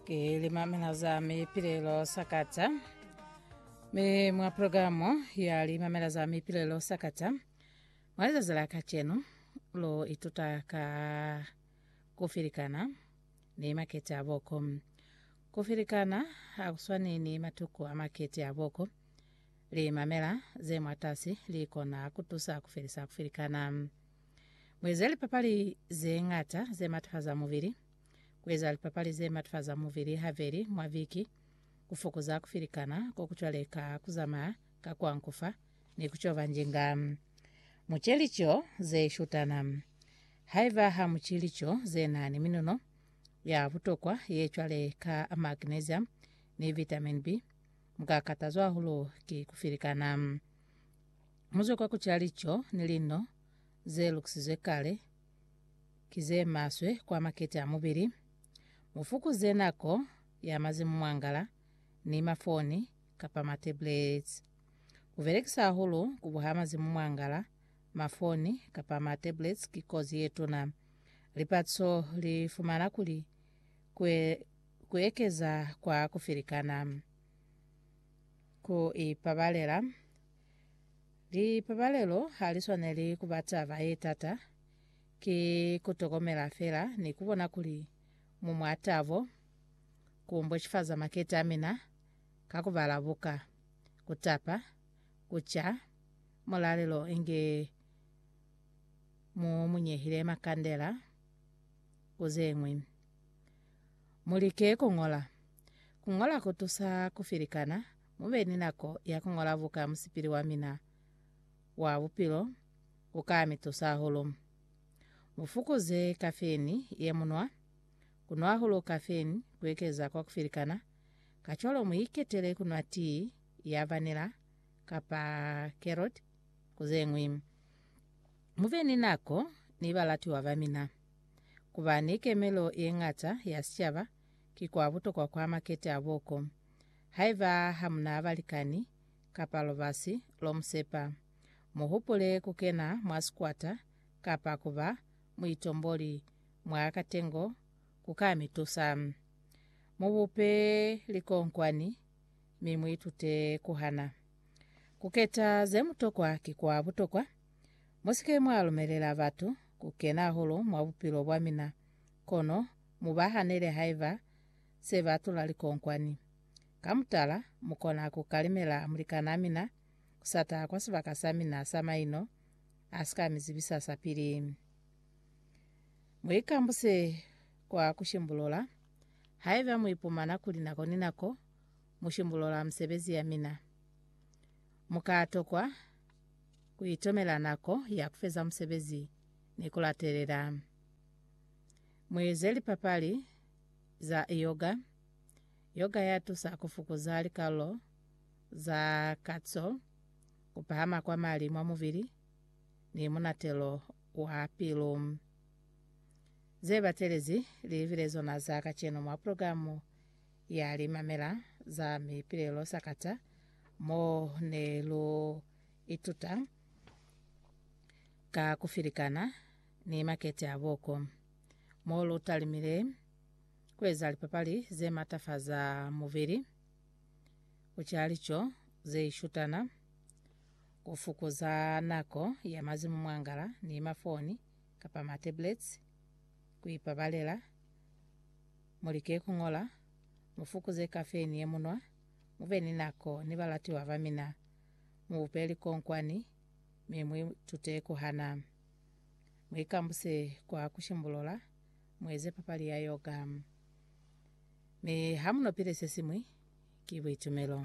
Ke limamela za mipilelo sakata mi mwa programu ya limamela za mipilelo sakata mwa lizazi la kacenu lo ituta ka kufilikana ni makete a boko kufilikana hakuswani ni matuku a makete a boko limamela ze mwatasi likona kutusa kufelisa kufilikana mweze lipapali ze ngata ze matafaza mubili Kueza lipapali zematfaza muvili haveli mwa viki kufokuza kufilikana kokucwaleka, kuzamaya ka kuankufa, ni kucoba njinga muce lico zeshutana. Haiba hamuci lico zenani minuno ya butokwa yecwale ka magnesium ni vitamin B, mukakatazwa hahulu ki kufilikana. Muzwe kwa kuca lico ni lino zelukusizwe kale. ki ze maswe kwa makete a mubili. Mu fukuze nako ya mazi mu mwangala ni mafoni kapa ma-tablets. Ku belekisa hahulu ku buha mazi mu mwangala, mafoni kapa ma-tablets ki kozi ye tuna. Lipatiso li fumana kuli ku, e, ku ekeza kwa ku filikana, ku ipabalela, Lipabalelo ha li swaneli ku ba taba ye tata. Ki ku tokomela fela ni ku bona kuli mu mwa tabo, ku mbocifaza makete a mina ka ku bala buka, ku tapa, ku ca mulalelo inge mu mu nyehile makandela, ku ze ñwi. Mu like ku ñola. Ku ñola ku tusa ku filikana Mu be ni nako ya ku ñola buka Musipili wa mina wa Bupilo ku ka mi tusa hahulu. Mu fukuze kafeini ye mu nwa. Ku nwa hahulu kafeini ku ekeza kwa ku filikana, kacwalo mu iketele ku nwa tii ya vanila kapa kerot ku ze ñwi. Mu be ni nako ni balatiwa ba mina. Ku ba ni kemelo ye ñata ya sicaba ki kwa butokwa kwa makete a boko. Haiba ha mu na balikani, kapa lubasi lo mu sepa, mu hupule ku kena mwa sikwata kapa ku ba muitomboli mwa katengo ku ka mi tusa. Mu bupe likonkwani mi mu itute ku hana. Ku keta ze mu tokwa ki kwa butokwa. Mu si ke mwa lumelela batu ku kena hahulu mwa bupilo bwa mina. Kono mu ba hanele haiba se ba tula likonkwani. Ka mutala, mu kona ku kalimela mulikanaa mina ku sa taha kwa sibaka sa mina sa maino a si ka mi zibisa sa pili. Mu ikambuse kwa ku shimbulola. Haiba mu ipumana kuli nako ni nako mu shimbulola misebezi ya mina, mu ka tokwa ku itomela nako ya ku feza musebezi ni ku latelela. Mueze lipapali za yoga. Yoga ya tusa ku fukuza likalulo za kaco, ku pahama kwa mali mwa mubili, ni munatelo wa pilu. Ze batelezi li libile zona za kacenu mwa pulogilamu ya Limamela za Mipilelo Sakata, mo ne lu ituta ka ku filikana ni makete a buko mo lu talimile ku eza lipapali ze matafaza mubili, ku ca lico ze ishutana, ku fukuza nako ya mazi mu mwangala ni mafoni kapa matablets, ku ipabalela. Mu like ku ñola, mu fukuze kafeini ye mu nwa, mu be ni nako ni balatiwa ba mina, mu bupe likonkwani, mi mu itute ku hana. Mu ikambuse kwa ku shimbulula, mu eze papali ya yoga. Mi ha mu no pile se siñwi, ki buitumelo.